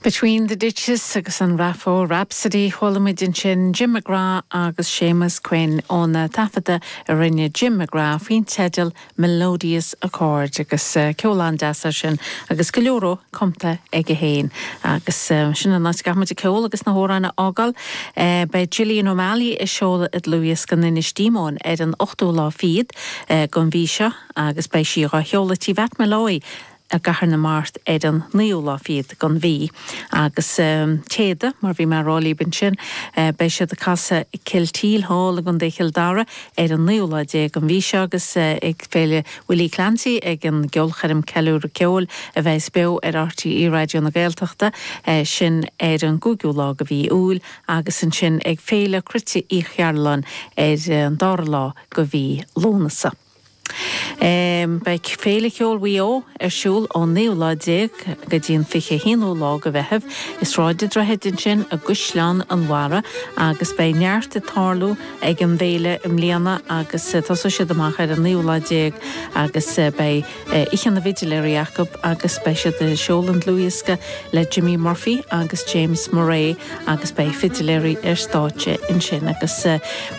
Between the Ditches agus an Raphoe Rhapsody, chuala muid ansin Jim McGrath agus Séamus Quinn óna taifeadadh a rinne Jim McGrath faoin teideal Melodious Accord agus ceol an-deas air sin agus go leor dhó cumtha aige féin. Agus sin an áit a gcaithfidh muid an ceol agus na hamhráin a fhágáil. Beidh Jillian O'Malley ag seoladh a dlúthdhiosca in Inis Díomáin ar an 8ú lá fichead den mhí seo agus beidh sí dhá sheoladh tí Mheait Molloy, i gCathair na Mart ar an naoú lá fichead den mhí agus Téada mar bhí mé a rá libh ansin beidh siad ag casadh i Kilteel Hall i gContae Chill Dara ar an naoú lá déag den mhí seo agus ag Féile Willie Clancy ag an gceolchoirm Ceiliúradh Ceoil a bheas beo ar RTÉ Raidió na Gaeltachta sin ar an gcúigiú lá de mhí Iúil agus ansin ag Féile Cruite Uí Chearbhalláin ar an dara lá de mhí Lúnasa. Beidh Féile Cheoil Mhaigh Eo ar siúl ón naoú lá déag go dtí an fiche haonú lá de Mheitheamh i Sráid an Droichid ansin i gCaisleán an Bharraigh agus beidh neart ag tarlú ag an bhféile i mbliana agus tosóidh siad amach ar an naoú lá déag agus beidh Oíche na bhFidiléirí acu agus beidh siad ag seoladh an dlúthdhiosca le Jimmy Murphy agus James Murray agus beidh fidiléirí ar stáitse ansin agus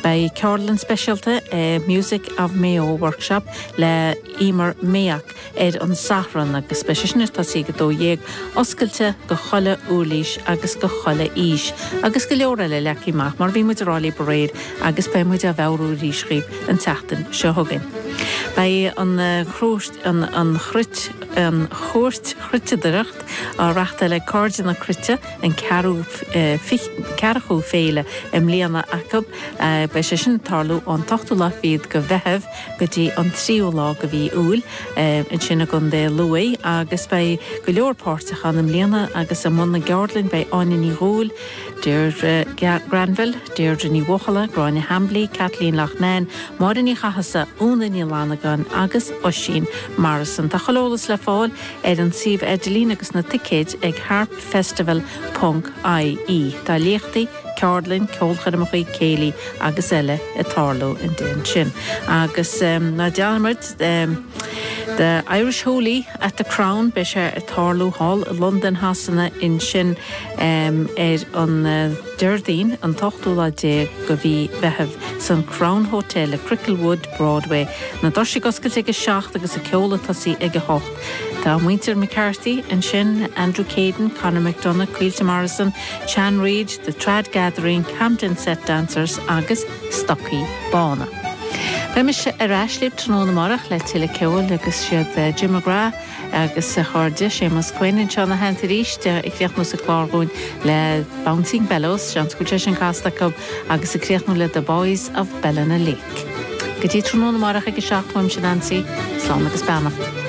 beidh ceardlann speisialta acu Music of Mayo Workshop le Emer Mayock ar an Satharn agus beidh sé sin ag tosú ag 12, oscailte do chuile uirlis agus do chuile aois agus go leor eile leagtha amach mar bhí muid a rá libh aréir agus beidh muid á mheabhrú arís dhaoibh. an tseachtain seo chugainn. Beidh an Chúirt Chruitireachta á reáchtáil ag Cairde na Cruite an ceathrachú féile i mbliana acu. Beidh sé sin ag tarlú ón t-ochtú lá fichead de Mheitheamh go dtí an tríú lá de mhí Iúil ansin i gContae Lú agus beidh go leor páirteach ann i mbliana agus i mbun na gceardlainn beidh Áine Ní Dhubhghaill, Deirdre Granville, Deirdre Ní Bhuachalla, Gráinne Hambly, Kathleen Loughnane, Máire Ní Chathasaigh, Úna Ní Fhlannagáin agus Oisín Morrison. Tá chuile eolas le fáil ar an suíomh idirlín agus na ticéid ag harpfestival ponc IE. Tá léachtaí, ceardlainn, ceolchoirmeacha, céilí agus eile ag tarlú in dtaobh ansin. Agus ná dearmad The Irish Hoolie at the Crown, beidh sé ag tarlú thall i Londain Shasana ansin. ar an Déardaoin an t-ochtú lá déag de mhí Mheithimh san Crown Hotel le Cricklewood, Broadway. Na doirse oscailte ag a seacht agus an ceol ag tosú ag a hocht. Tá muintir McCarthy ansin, Andrew Caden, Conor McDonagh, Caoilte Morrison, Chan Reid, The Trad Gathering, Camden Set Dancers agus Stocaí Bána. Beidh mise ar ais libh tráthnóna amárach le tuilleadh ceoil agus siad Jim McGrath, Agus a chairde, Séamus Quinn anseo i mo theannta arís, ag críochnú sa gclár dhúinn le Bouncing Bellows, seans go bhfuil sé sin casta agam, agus ag críochnú le The Boys of Ballina Lake. Go dtí tráthnóna amárach ag a seacht, uaimse Nansaí, slán agus beannacht.